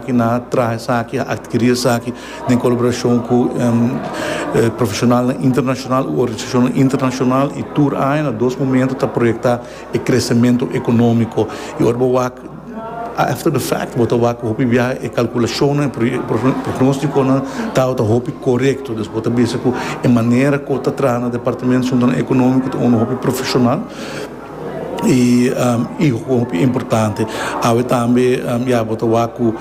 Aki nan a traha esaki, a adkiri esaki den kolaborashon ku profeshonalnan internashonal u organisashonnan internashonal i tur aña na dos momentu ta proyektá e kresementu ekonómiko. I ora bo wak after the fact bo ta wak ku hopi biaha e kalkulashonnan, e prognóstikonan tabata hopi korekto. Des bo ta bisa ku e manera ku ta traha na departamento suntu nan ekonómiko ta unda hopi profeshonal. y y hopi importante awe tambe ya bo ta wak cu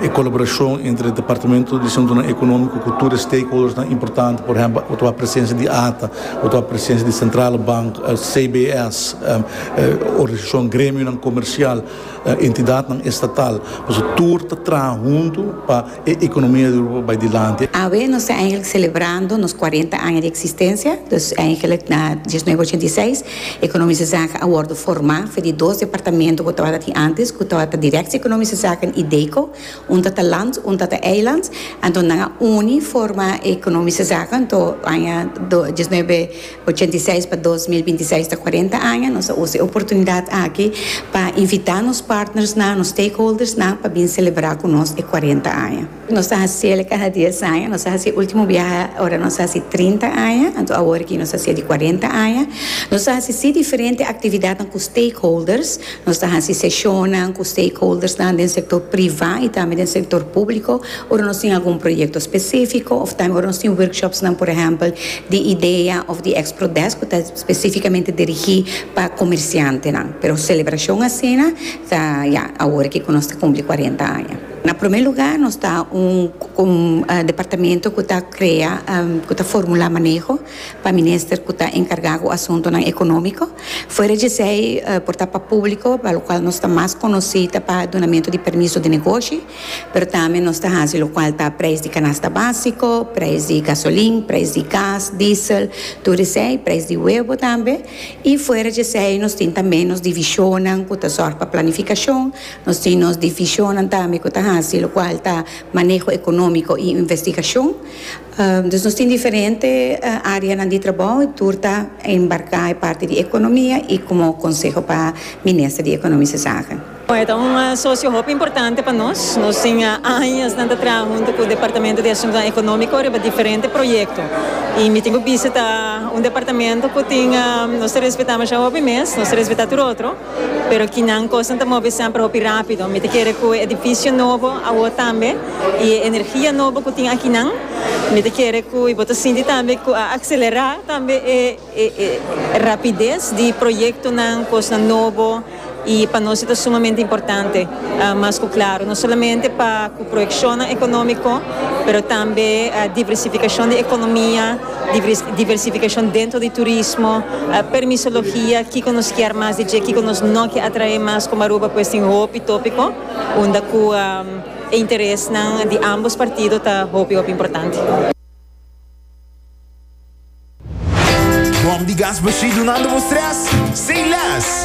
e colaboracion entre departamento di asuntonan economico cu tur e stakeholders nan importante por ehempel bo ta wak presencia di ata bo ta wak presencia di centrale bank CBS organisacion gremionan comercial entidadnan estatal pasobra tur ta traha hunto pa E economia di Europa bai dilanti. Awe nos ta eigenlijk celebrando nos cuarenta aña di existencia, dus eigenlijk na dieznuebe ochenta i seis Economische Zaken a wordo forma for di dos departamento cu tabata tin antes cu tabata Directie Economische Zaken y DECO, un ta ta land, un ta ta eiland, anto nan a uni forma Economische Zaken anto aña dieznuebe Ochenta i seis pa dos mil binti seis ta kuarenta aña. Nos a usa e oportunidat aki pa invitá nos partnersnan, nos stakeholdersnan pa bin selebrá ku nos e kuarenta aña. Nos ta hasiel kada dies aña. Nos a hasi e último biaha ora nos a hasi trinta aña. Anto awor aki nos a hasiel di kuarenta aña. Nos a hasi sí diferente aktividatnan ku stakeholders. Nos ta hasi seshonnan ku stakeholdersnan den sektor privá i tambe den sektor públiko ora nos tin algun proyekto spesífiko òf tambe ora nos tin workshopsnan, por ehèmpel, di idea òf di Expro Desk ku ta spesífikamente dirigí pa komersiantenan. Pero selebrashon asina ta, ya, awor aki ku nos ta kumpli kuarenta aña. Na promé lugá, nos ta un departamento ku ta krea, ku ta formulá maneho. pa minister cu ta encarga cu asuntonan economico. Fuera djesei por ta pa publico pa locual nos ta mas conoci ta pa dunamento di permiso di negoshi, pero tambe nos ta haci locual ta prijs di canasta basico, prijs di gasolin, prijs di gas, diesel, tur esey, prijs di huevo tambe. Y fuera djesei nos tin tambe nos divisionnan cu ta zorg pa planificacion, nos tin nos divisionnan tambe cu ta haci locual ta maneho economico y investigacion. Dus nos tin diferente areanan di trabou y tur ta embarca e parti di economia y como conseho pa Minister di Economische Zaken. E ta un socio hopi importante pa nos. Nos tin añasnan ta traha hunto cu Departamento di Asuntonan Economico riba diferente proyecto y mi tin cu bisita un departamento cu tin nos ta respeta masha hopi mes, nos ta respeta tur otro. Pero kinan kosnan ta move semper hopi rápido. Mi ta kere ku e edifisio nobo awor tambe i e energia nobo ku tin akinan, mi ta kere ku i bo ta sinti tambe ku a akselerá tambe e rapides di proyektonan, kosnan nobo i pa nos e ta sumamente importante. Mas ku klaru, no solamente pa ku proyekshonnan ekonómiko, pero tambe diversifikashon di ekonomia. diversificacion dentro di turismo, permisologia, kico nos kier mas di dje, kico nos no kier atrae mas como Aruba pues tin hopi topico unda cu e interesnan di ambos partido ta hopi hopi importante. Bom di gas bashí dunando bo stress sin les.